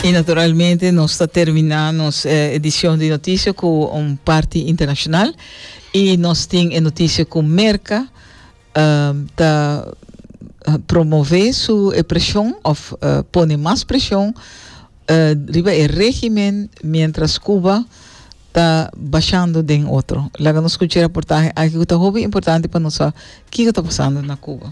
Y naturalmente nos ta termina nos eh, edicion di noticia cu un parti internacional y nos tin e noticia cu Merca uh, ta uh, promove su e presion of uh, pone mas presion uh, riba e régimen mientras Cuba ta bashando den otro. Laga nos scucha e reportaje aki cu ta hopi importante pa nos sa kico ta pasando na Cuba.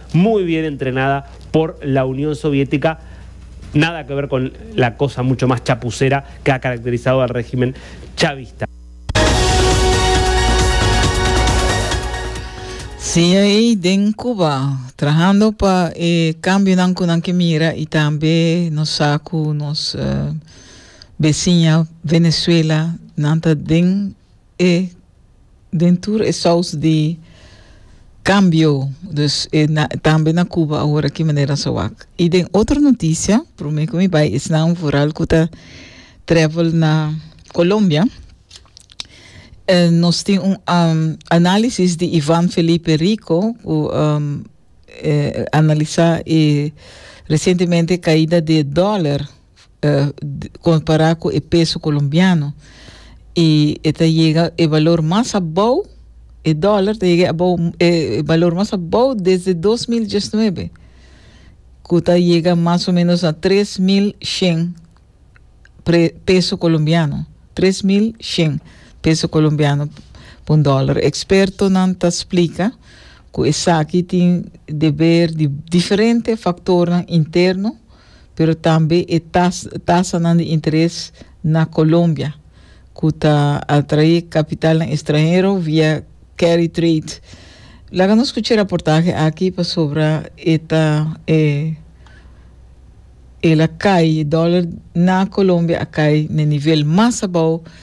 muy bien entrenada por la Unión Soviética, nada que ver con la cosa mucho más chapucera que ha caracterizado al régimen chavista. Cia ei den Cuba, trahando pa e cambionan cu nan ke mira y tambe nos sa cu nos eh, veciña Venezuela nan ta den E den tur e saus di cambio dus e na, tambe na Cuba ahora ki manera sowak. Y den otro noticia, prome cu mi bay esnan vooral cu ta travel na Colombia, eh, nos tin un um, análisis di Ivan Felipe Rico cu um, eh, analisa e recientemente caida di e dólar. kompará ku e peso kolombiano i e ta yega e balor mas abou e dòler ta yega abou e balor mas abou desde 2019 ku ta yega mas o menos na 3100 pre, peso colombiano, 3.100 peso colombiano pa un dólar. Expertonan ta explica cu esaki tin deber di diferente factornan interno pero tambe e tas, tasanan di interes na Colombia, cu ta atrae capitalnan extranhero via carry trade. Laga nos scucha e raportaje aki pasobra e ta e el a cay, e dollar na Colombia a cay na e nivel mas abao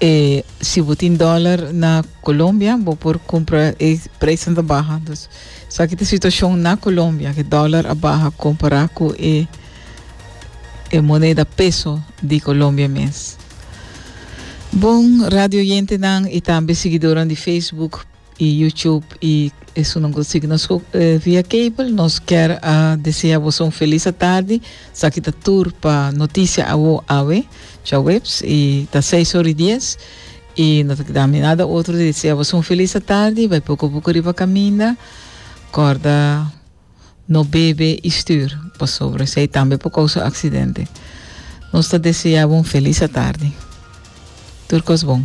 E si bo tin dólar na Colombia, bo por compra e prijzen ta baha. Dus, saki ta situacion na Colombia, ke dólar a baha compará cu e, e moneda peso di Colombia mes. Bon, radio yentenan y tambe siguidoran di Facebook, y YouTube y esunnan cu ta sigui nos via cable nos kier a desea boso un feliz atardi esaki ta tur pa noticia awo awe cha webs y ta seis ora y dies y no ta keda mi nada otro di desea boso un feliz atardi bay poco poco riba caminda corda no bebe y stuur pasobra esey tambe por causa accidente nos ta desea bo un feliz atardi tur cos bon.